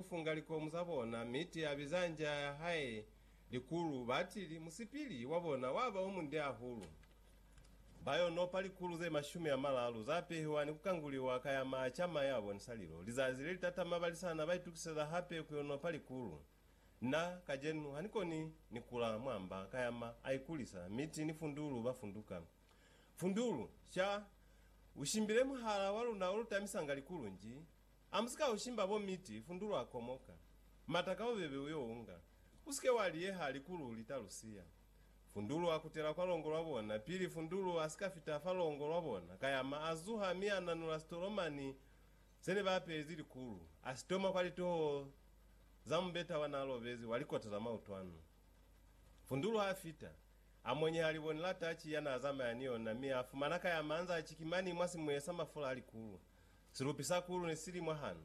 kufunga likomu za bona, mi ti abiza nja ya hae likulu, batili, musipili wa bona waba omunde ahulu. Bayo nopa likulu ze mashumi amalalu za pehiwa ni kukanguliwa ka yama a cama ya bonisa lilo. Lizazi lelitatama balisana baitukiseza hape kuyo nopa likulu. Na, kajenu, hanikoni ni kula mwa mba ka yama aikulisa, mi ti ni fundulu ba funduka. Fundulu, ca, ushimbile muhala wa luna olutamisanga likulu nji, Amusika ushimba bo miti, fundulu a komoka. Mata ka bubebe uyo unga. Usike wa liyeha likulu ulita lusiya. Fundulu a kutela kwa longo lwa bona, pili fundulu asika fita fa longo lwa bona, kayama a zuha mi a nanula sitolomani zene ba apezi likulu, a sitoma kwa litoho za mubeta wa na lobezi wa likota za mautwanu. Fundulu ha fita, a monyeha liboni la tachi ya na zamaya ni yona, mi a fumana kayama anza chikimani mwa simuye sa mafula a likulu. Silupi sa kulu ne si li mwahanu.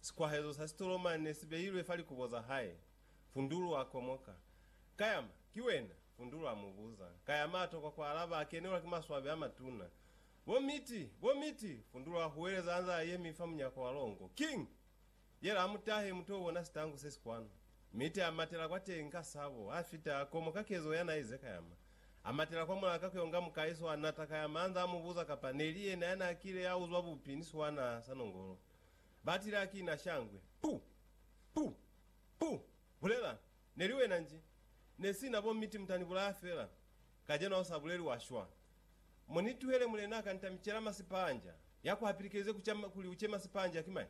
Sikwahezo sa sitolomani ne si beilwe fa likubo za hae. Fundulu a komoka. Kayama, ki wena? Fundulu a mu buza. Kayama a tokwa ku alaba, a kenelwa ki maswabi a matuna. Bo Miti! Bo Miti! Fundulu a huweleza anze a yemi fa munyako wa longo. King! Yela amutahe mutu oubona sitangu sesi kwanu, mi te amatela kwateñi ka sabo, afita komo ka kezo yana aize kayama. Amatela kwa mulaka kuyonga mukai swanata kayama anza amubuza kapa neli yena yana akile yauzwa bupi ni swana sa nongolo. Batile akina shangwe. Pu! Pu! Pu! Bulela! Neli wena nji? Nesina bo miti mutani bulaya fela. Kajeno ausa buleli wa shwa. Munituhele mulena akantamicela masipanja. Yakuhapilikelize kuca kuli uce masipanja ki mai?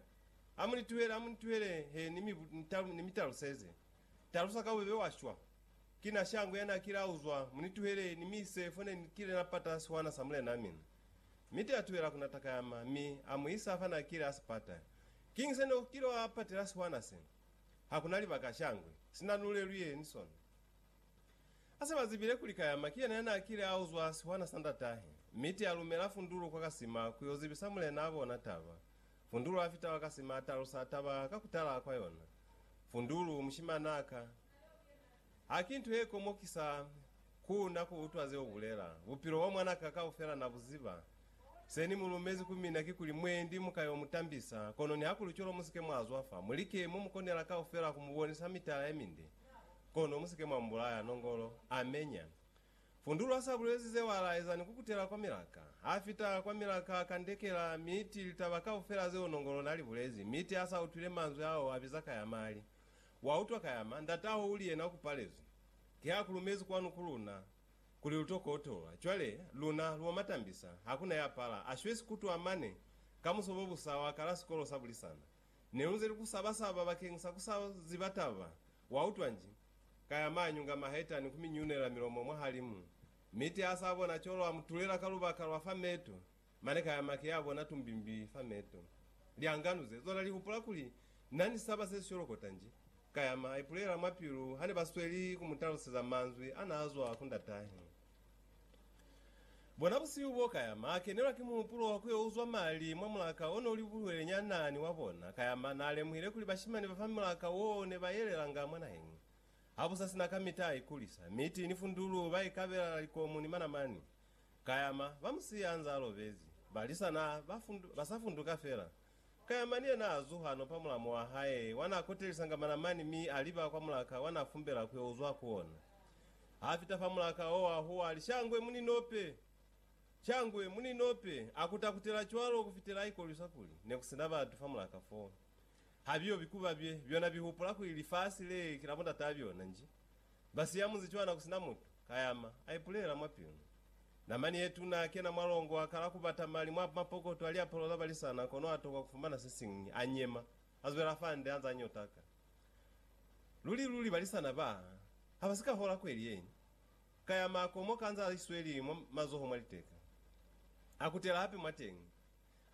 Amunituhele, amunituhele he ni mi, ni mi taluseze. Talusa ka bubebe wa shwa. Ki na shango ya na kile a uzwa, munituhele ni mi ise fo ne ni kile na pata sihwana sa Mulena min. Mi te atubela ku na takayama, mi a mu isa fa na kile a si pata. Kiñi se ne u kile wa patela sihwana se? Ha ku na libaka shangwe, sina nu leluye ni sona. A se ba zibile kuli kayama ki yena ya na kile a uzwa sihwana sa ndatahe, mi te a lumela fundulu kwa kasima ku yo zibisa mulena a bona taba. Fundulu a fita Wakasima a talusa taba ka ku tala kwa yona. Fundulu, Mushimana ka, ha ki nto ye komokisa ku na ku utwa ze u bulela. Bupilo bwa mwana ka kaufela na bu ziba. Se ni mu lumezi ku mina kikuli, Mwendi mu ka yo mu tambisa, kono nihakuli cwalo mu si ke mwa zwa fa. Mu like mo mu konela kaufela ku mu bonisa mitala ye minde, kono mu si ke mwa mu bulaya. Nongolo, Amenya. Fundulwa sa bulezi zeo a laeza ni kukutela kwa milaka. Ha fita kwa milaka a kandekela, mi ti litaba kaufela zeo Nongolo na li bulezi, mi ti a sa utwile manzwi ao a biza Kayama a li, Wa utwa Kayama, ndata hao uli yena ku palezwi. Ki ha ku lumezi kwanu ku luna, kuli lu to kotolwa. Cwale, luna, lu omatambisa, hakuna ya pala. A shwezi kutwa mane, ka musobobusa wa kala sikolo sa bulisana. Nelunze li ku saba-saba bakeng sa ku sa ziba taba. Wa utwa nji? Ka ya maanyunga maheta ni ku mi nyunela milomo mwahalimu. Mi te a sa bona co lwa mu tulela ka lubaka lwa fa meto, mane ka ya make ya bona tumbimbi fa meto. Lianganu ze zona li hupula kuli na ni saba se si colokota nji. Ka ya ma ipulela mwa pilu ha ne ba sweli ku mu taluseza manzwi a na zwa ku ndatahe. Bona busihu bo ka yama, a kenelwa ki muhupulo wa ku yo uzwa mali mwa mulaka o ne u li buhwele nya naa ni wa bona. Ka yama, naa lemuhile kuli bashimani ba fa mulaka woo ne ba yelelanga mwa naheng ha bu sa sina kamita a ikulisa, miti ni fundulu ba ikabelana likomu ni manamani. Ka yama, ba mu siya anzaa lobezi, ba lisa naa ba sa funduka fela. Kayamani yena a zuha no pa mulamu wa hae, wa na kotelisanga manamani mi a liba kwa mulaka wa na fumbela ku yo uzwa ku ona. Ha fita fa mulaka wo, a huwa, a li, Shangwe, mu ni nope! Shangwe, mu ni nope! A kuta kutela cwalo ku fitela a ikolwisa kuli ne ku si na batu fa mulaka foo. Ha biyo bikuba bye, byona bi hupula kuli lifasi le ki la bo ndataa byona nji. Ba siya munzi cwana kusina mutu, kayama, a ipulela mwa pilu. Namani ye tuna a kena mwa longo, a kala kubata mali mwa mapokoto a liapalo za balisana, kono a tokwa kufumana sesiñwi. A nyema, a zwela fande, anza anyotaka. Luli luli balisana ba ha ba si ka hola kweli yeñi. Kayama, a komoka anza a isweli mwa mazoho mwa liteka. A kutela hape mwateñi.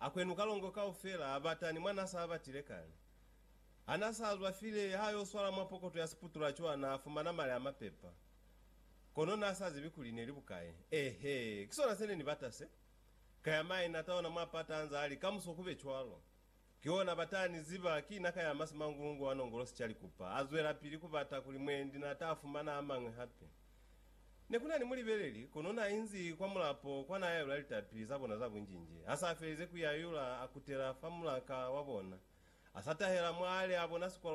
Akwenu kalongo kaufela abata ni mwana sa batile kale. Hana sa zwa file ha yo swala mwa pokoto ya siputula cwa na fumana mali a mapepa. Kono na sa zibi kuli neli bukae. Eehe, ki sona se ne ni bata se. Ka ya maina ata ona mwa pata anza ali, Kamuso kube cwalo. Ki ona bata ni ziba, ki na ka yama simangungu wa nongolosi ca likupa. A zwela pili kubata kuli mwendi na ta fumana amañwi hape. Ne ku na ni mulibeleli, kono n'a inzi kwa mulapo kwa n'a yayula litapi za bona za bunjinji. Ha s'a felize ku yayula, a kutela fa mulaka wa bona, a sa tahela mw'a li a bona sikwalo